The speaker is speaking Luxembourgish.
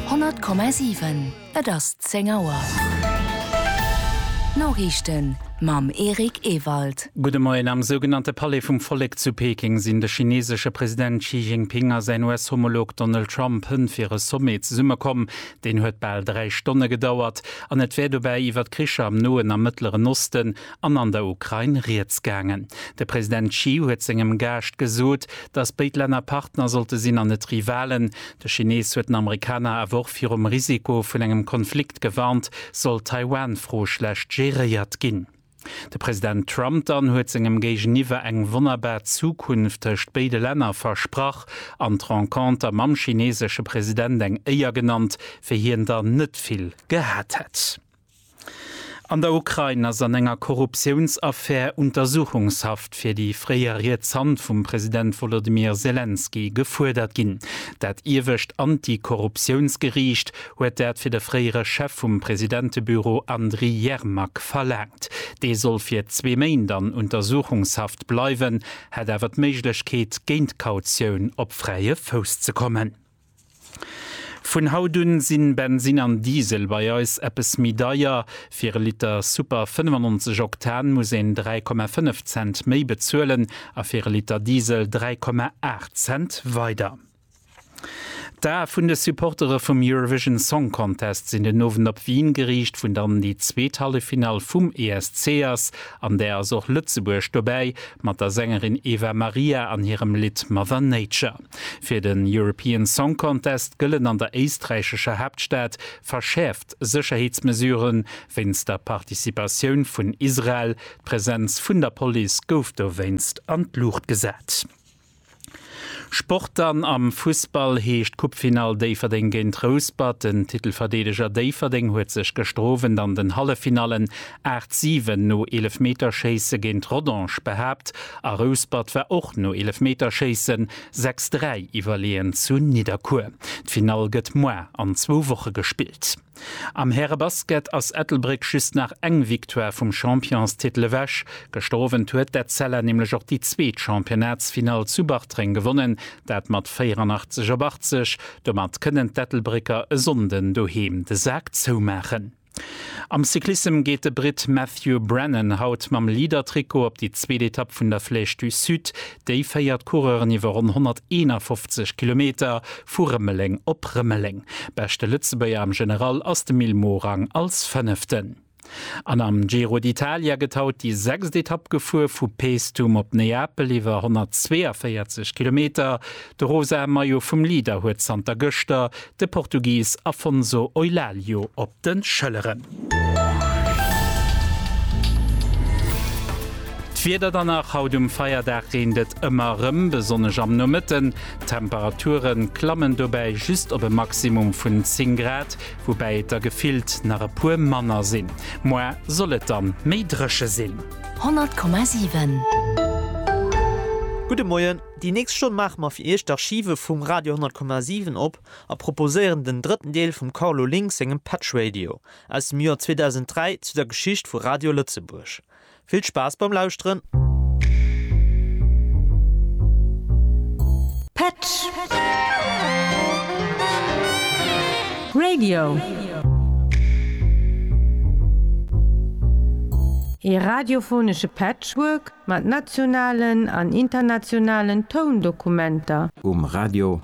100,7 Et ass 10 Auer. D'Noriichten mam Eric Ewald. Gudde Moien. Am sougenannte Palais vum Vollek zu Peking sinn de chineesesche President Xi Jinping a säin US-Homolog Donald Trump hënt fir e Sommet zesummekomm. Deen huet bal dräi Stonne gedauert an et wär dobäi iwwer d'Kricher am Noen a Mëttleren Osten, an an der Ukrain rieds gaangen. De President Xi huet sengem Gaascht gesot, datt béid Länner Partner sollte sinn an net Rivalen. De Chinees huet den Amerikaner awer och virum Risiko vun engem Konflikt gewarnt, sollt d'Taiwan-Fro schlecht geréiert ginn. De President Trump dann huet sengem Géigeniwwer eng wonnerbar Zukunft tëscht béide Länner versprach an d'Renconter mam chineesesche President eng Éier genannt, wéi hien der net vill gehat hätt. An der Ukrain ass an enger Korruptiounsaffär Untersuchungshaft fir déi fréier riets Hand vum President Wolodymyr Selenskyj gefuerdert ginn. Dat iewescht Anti-Korruptiounsgeriicht huet dat fir de fréiere Chef vum Presidentebüro Andriy Yermak verlaangt. Dee soll fir zwee Méint an Untersuchungshaft bleiwen, hätt awer d'Méiglechkeet géint Kautioun op fräie Fouss ze kommen. Vun haut un sinn Bensin an Diesel bei eis eppes méi deier. Fir e Liter Super 95 Oktan muss een 3,5 Cent méi bezuelen a fir e Liter Diesel 3,8 Cent weider. D'Ae vun de Supportere vum Eurovision Song Contest sinn den Owend op Wien geriicht, vun dann déi zweet Halleffinall vum ESC ass. An där ass och Lëtzebuerg dobäi mat der Sängerin Eva Maria an hirem Lidd Mother Nature. Fir den European Song Contest gëllen an der éisträichescher Haaptstad verschäerft Sécherheetsmesuren, wéinst der Participatioun vun Israel. D'Presenz vun der Police gouf dowéinst an d'Luucht gesat. Sport dann Am Fussball heescht Coupefinall Déifferdeng géint Rouspert. Den Titelverdeedeger Déifferdeng huet sech gestro went an den Halleffinallen 8, 7 no Eelefmeterschéisse géint Rodange behaapt a Rouspert war och no Eelefmeterschéisse 6, 3 iwwerleeën zu Nidderkuer. D'Finall gëtt moar an zwou Woche gespillt. Am Härebasket ass Ettelbréck just nach eng Victoire vum Championstitel ewech. Gëschter Owend huet d'Etzella nämlech och déi zweet Championnatsfinall zu Bartreng gewonnen, dat mat 84 op 80. Domat kënnen d'Ettelbrécker e Sonnden doheem de Sak zoumaachen. Am Cyclissem geet de Britt Matthew Brennan haut mam Leader-Trikot op déi zweet Etapp vun der Flèche du Sud. Déi féiert d'Coureuren iwwer ronn 151 Kilometer vu Rëmeleng op Rëmeleng. Beschte Lëtzebuerger am General ass de Mil Morang als Fënneften. An am Giro d'Italia gëtt haut déi sechst Etapp gefuer, vu Paestum op Neapel iwwer 142 Kilometer. De rosae Maillot vum Leader huet zanter gëschter De Portugis Afonso Eulalio op de Schëlleren. D'Wieder dann nach, Haut um Feierdag reent et ëmmer erëm, besonnesch am Nomëtten. D'Temperature klammen dobäi just op e Maximum vun 10 Grad, woubäi et der gefillt nach e puer manner sinn. Moar soll et dann méi dréche sinn. 100,7. Gudde Moien. Déi nächst Stonn maache mer fir Iech d'Archive vum Radio 100,7 op a proposéieren den drëtten Deel vum Carlo Link sengem Patch Radio aus dem Joer 2003 zu der Geschicht vu Radio Lëtzebuerg. Vill Spaass beim Lauschteren! Patch Radio, ee radiophonesche Patchwork Mat nationalen an internationalen Toundokumenter. Um Radio.